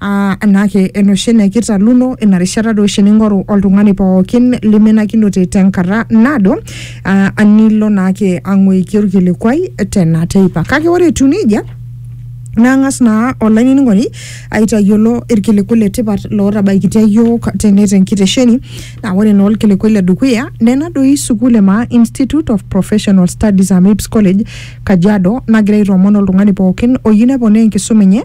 aa anaake enoshi enaa ekitaluno ina rishata doi oshi ning'oru oltung'ani pookin limenakinote tenkata naado aa anilo naake ang'uiki orkilikuai tena teipa kake ore etiu nejia nang'as naa olainining'oni aitayiolo irkiliku le tipat lootabaikitia yiok tene tenkitesheni naa ore naa orkiliku le dukuya nena doi sukuul e maa institute of professional studies amips college kajiado nagira aitoomon oltung'ani pookin oyieu neponaa enkisuma enye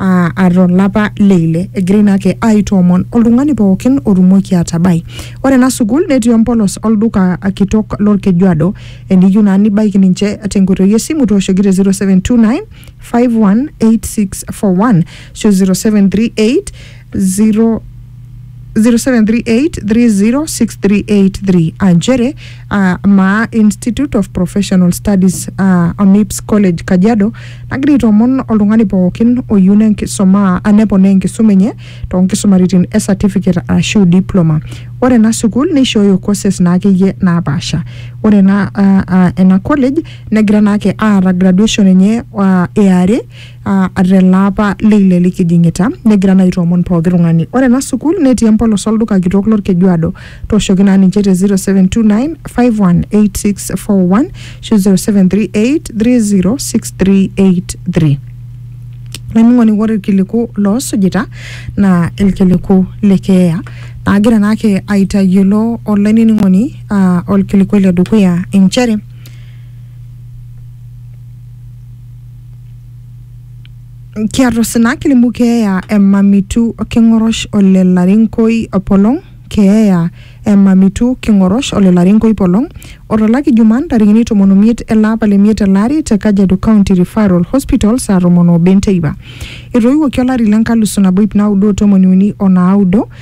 aa ato lapa le ile egira ina ake aitoomon oltung'ani pookin otumoki atabai. Ore ena sukuul netii empolos olduka kitok lolkejuado. Eniyieu naa nibaiki ninche tenkoitoi esimu tooshoki te 0729 518641 ashu 0738 0 0738306383 aa nchere aa maa Institute of Professional Studies aa AMIPS College Kajiado nagira aitoomon oltung'ani pookin oyieu nenkisuma aa neponaa enkisuma enye too nkisumaritin e certificate arashu diploma. Ore ena sukuul neishooyo courses naa akeyie naapaasha. Ore ena aa aa ena college negira naake aata graduation enye aa e are ah, tele apa leile likijing'ita negira naa aitoomon pooki tung'ani ore ena sukuul netii empolos olduka kitok lorkejuado tooshoki naa ninche te 0729 518641 ashu 0738 306383 olainining'oni ore irkiliku loosujita naa irkiliku le keeya naagira naake aitayiolo olainining'oni ah, orkilikuai le dukuya inchere Kiatusina kilimu keeya e Mamitu King'orosh ole Larinkoi Polong, keeya e Mamitu King'orosh ole Larinkoi Polong o to laki Jumaa ntarikini tomon omiet ele apa le miet ele ari te Kajiado County Referral Hospital saa tomon oobo enteipa. Etoiwuoki olari le nkalusu nabo iip naudo o tomoni uni o naudo